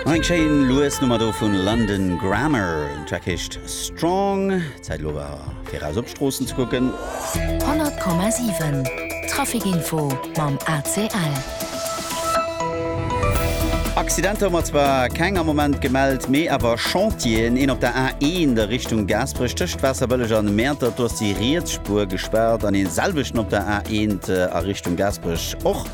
Nach eng schéin lues Nummer do vun London Grammar. Den Track heescht Strong. Zäit elo awer fir eraus op d'Stroossen ze kucken. 100,7 Traficinfo mam ACL. Accidenter hu mer zwar keng am Moment gemellt, mee awer Chantieren. Een op der A1 a Richtung Gaasperech tëscht Waasserbëlleg an Mäertert, do ass déi riets Spuer gespaart, an dee selwechten op der A1 a Richtung Gaasperech och.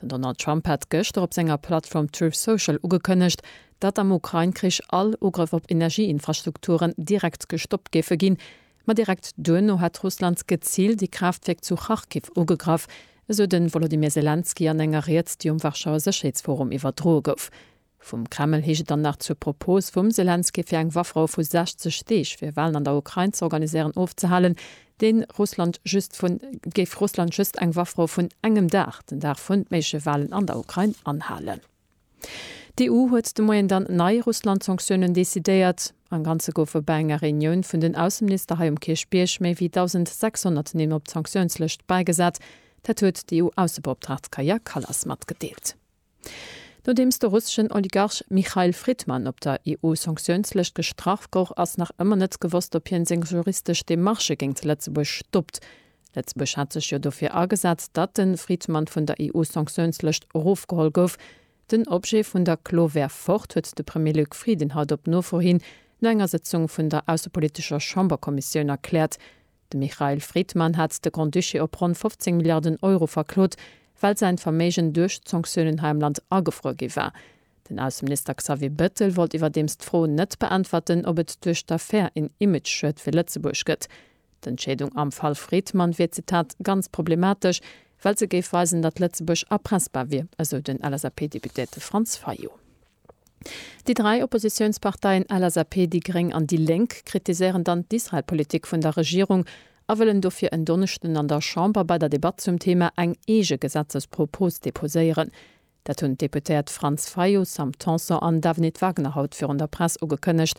Den Donald Trump hat gëschter op senger Plattform Truth Social ugekënnegt, datt am Ukrain-Krich all Ugrëff op Energieinfrastrukturen direkt gestoppt géife ginn. Ma direkt duerno hätt Russland geziilt ee Kraaftwierk zu Kharkiv ugegraff, esou de Wolodymyr Selenskyj an enger Ried, déi um Warschauer Sécherheetsforum iwwerdroe gouf. Vum Kreml heescht et dann nach, zur Propos vum Selenskyj fir eng Waffrou vu 60 Deeg fir Walen an der Ukrain ze organiséieren, ofzehalen, de Russland just vun, géif Russland just eng Waffrou vun engem Dag, den Dag vun méigleche Walen an der Ukrain, anhalen. D'EU huet de Moien dann nei Russland-Sanktiounen decidéiert. Am Ganze goufe bei enger Reunioun vun den Ausseminister hei um Kierchbierg méi wéi 1.600 Nimm op d'Sanktiounslëscht bäigesat. Dat huet d'EU-Aussebeoptraagt Kaja Kallas matgedeelt. Nodeems de russeschen Oligarch Michail Fridman op der EU-Sanktiounslëscht gestrach goug, ass nach ëmmer net gewosst, ob hien seng juristesch Demarchë géingt Lëtzebuerg stoppt. Lëtzebuerg hat sech jo dofir agesat, datt de Fridman vun der EU-Sanktiounslëscht erofgeholl gouf. Den Objet vun der Klo wär fort, huet de Premier Luc Frieden haut op Nofro hin no enger Sëtzung vun der aussepolitescher Chamberkommissioun erkläert. De Michail Fridman hat de Grand-Duché op ronn 15 Milliarden Euro verklot, well säin Verméigen duerch d'Sanktiounen hei am Land agefruer gi war. Den Ausseminister Xavier Bettel wollt iwwerdeems d'Fro net beäntwerten, ob et duerch d'Affär een Image-Schued fir Lëtzebuerg gëtt. D'Entscheedung am Fall Fridman wier, Zitat, ganz problematesch, well se géif weisen, datt Lëtzebuerg erpressbar wier, esou den LSAP-Deputéierte Franz Fayot. Déi dräi Oppositiounsparteien LSAP, déi gréng an déi Lénk kritiséieren dann d'Israel-Politik vun der Regierung a wëllen dofir en Donneschden an der Chamber bei der Debatt zum Thema eng eege Gesetzespropos deposéieren. Dat hunn d'Deputéiert Franz Fayot, Sam Tanson an Davenit Wagner haut virun der Press ugekënnegt.